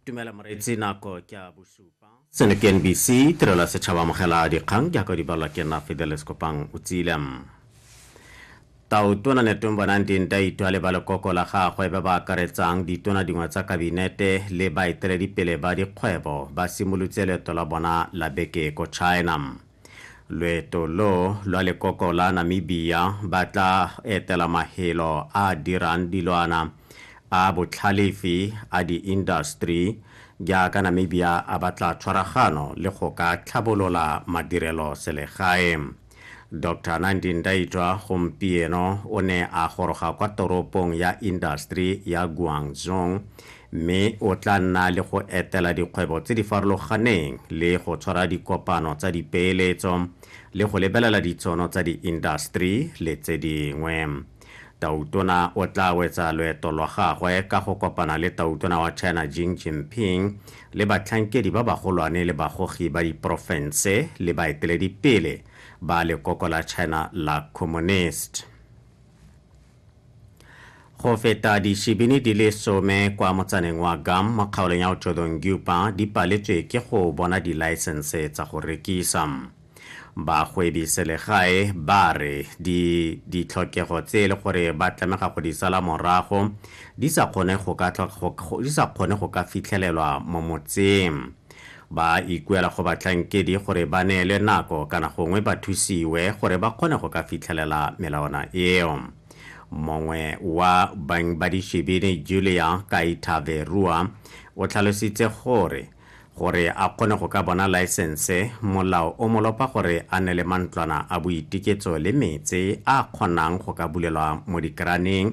dumela moreetsi nako ke a bosupa seno ke nbc tirelo ya setšhaba amogela dikgang jaaka di balwa ke nna fidelis kopang o tsile tautona netong bonang dinta itwa le ba lekoko la gagwe ba ba akaretsang ditona dingwe tsa kabinete le baeteledipele ba dikgwebo ba simolotse leeto la bona la beke ko china Loeto lo lwa lekoko la Namibia ba tla etela mahelo a a dirang dilwana a botlhalefi a di-industry jaaka Namibia a batla tshwaragano le go ka tlhabolola madirelo selegae. Doctor Nandi Ndaitwah gompieno o ne a goroga kwa toropong ya industry ya Guangzhou mme o tla nna le go etela dikgwebo tse di farologaneng le go tshwara dikopano tsa dipeeletso le go lebelela ditšhono tsa diindaseteri le tse dingwe. Tautona o tla wetsa loeto lwa gagwe ka go kopana le Tautona wa China Jing Jinping le batlhankedi ba bagolwane le bagogi ba diporofense le baeteledipele ba lekoko la China la Communist. go feta dishibini di le some kwa motsaneng wa gam mo kgaolong ya otodong gupa di paletswe ke go bona dilaesense tsa go rekisa bagwebi selegae ba re ditlhokego tse e le gore ba tlamega go di sala morago di sa kgone go ka fitlhelelwa mo motseng Ba ikuela go batlhankedi gore ba neelwe nako kana gongwe ba thusiwe gore ba kgone go ka fitlhelela melawana eo. Mongwe wa bang ba dishibini Julia Kaithaverua o tlhalositse gore gore a kgone go ka bona laesense, molao o mo lopa gore a nne le mantlwana a boitiketso le metse a kgonang go ka bulelwa mo dikeraneng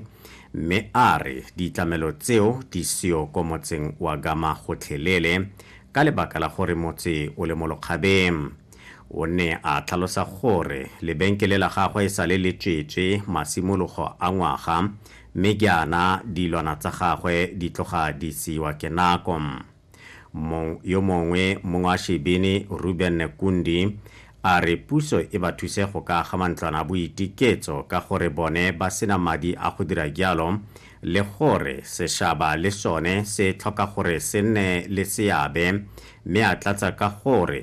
mme a re ditlamelo tseo di seo ko motseng wa Gama gotlhelele ka lebaka la gore motse o le mo lokgabeng. O ne a tlhalosa gore lebenkele la gagwe e sale le tswetswe masimologo a ngwaga mme jaana dilwana tsa gagwe di tloga di seiwa ke nako. Yo mongwe mong wa Shebini, Reuben Nekundi, a re puso e ba thuse go ka aga mantlwana a boitiketso ka gore bone ba sena madi a go dira jalo le gore seshaba le sone se tlhoka gore se nne le seabe mme a tlatsa ka gore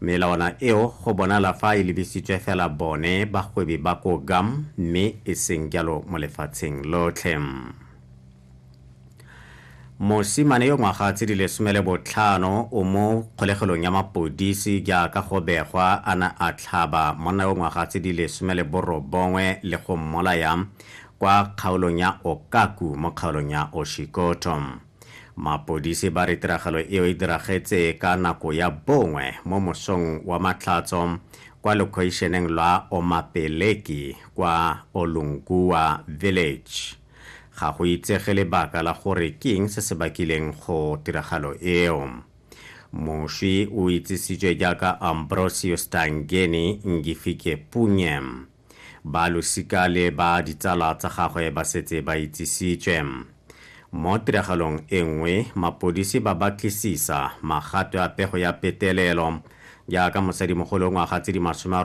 Melawana eo go bonala fa e lebisitswe fela bone bagwebi ba ko Gam mme e seng jalo mo lefatsheng lotlhe. Mosimane yo ngwaga tse di lesome le botlhano o mo kgolegelong ya mapodisi jaaka go begwa a na a tlhaba monna yo ngwaga tse di lesome le borobongwe le go mmolaya kwa kgaolong ya Okaku mo kgaolong ya Oshikoto. Mapodisi ba re tiragalo eo e diragetse ka nako ya bongwe mo mosong wa matlhatso kwa lekhoišeneng lwa Omapeleki kwa Olungua Village. Ga go itsege lebaka la gore ke eng se se bakileng go tiragalo eo. Moswi o itsisitswe jaaka Ambrosio Stangeni Ngifike Punye. Ba losika le ba ditsala tsa gagwe ba setse ba itsisitswe. Mo tiragalong e nngwe, mapodisi ba batlisisa magato a pego ya petelelo jaaka mosadimogolo ngwaga tse di masome a